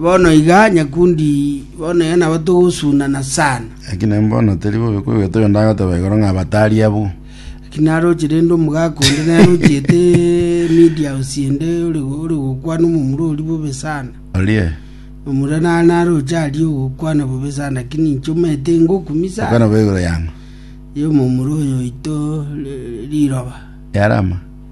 Bono iga, nyakundi, bono iga nabo togosuunana sana. Lakini mbono teri bobe kwegweta oyo ndagoteba igoro ng'a batari abwo. Lakini aroche rende omogaka onde nere ochiete media house ende ore ore gokwana omomura oria bobe sana. Orie, Omura nare naroche aria ogokwana bobe sana, lakini inche omanyete ngokumia sana. okwana bo igoro yang'o? Ye omomura oyo oito ri- riroba. Yarama?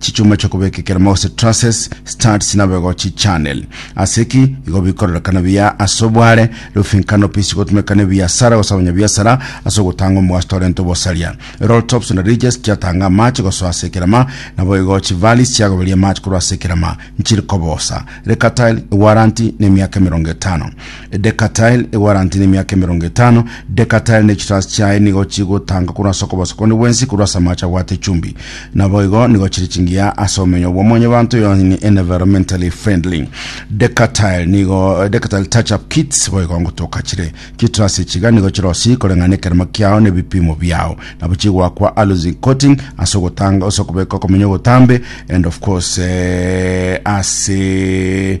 Chichuma chi'okobeka ekeremo gose trusses, studs nabego chichannel. Ase ki? Igo bikororekana buya ase obware, roofing canopies chigotumeka nebiasara gose abanyabiasara ase ogotanga omogaso torenta obosaria. Roll tops na ridges chiatanga amache gosoa ase ekerema, naboigo chivalleys chiagoberia amache korwa ase ekerema. Nchiri kobosa. Recatile, ewaranti, na emiaka emerongo etano. Edekatile ewarantie nemiaka emerongo etano. Dekatile ne chitasi chiaye nigo chigotanga korwa ase okobosa konde bwensi korwa ase amache abwate echumbi. Naboigo nigo chire chingiya ase omenyo bwa mwanyabanto yaani environmentally friendly. Dekatile nigo Decatile touch up kits boigo ngotoka chire chitrasi echiga nigo chirosi koreng'ana ekerema kiao ne bipimo biao nabo chigwakwa aluzi coating ase ogotanga ase okobeka okomenya ogotambe and of course eh, ase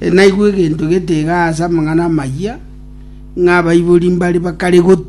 Naigwe egento getiga ase amang'ana amayia, ng'a abaibori mbare bakare goti.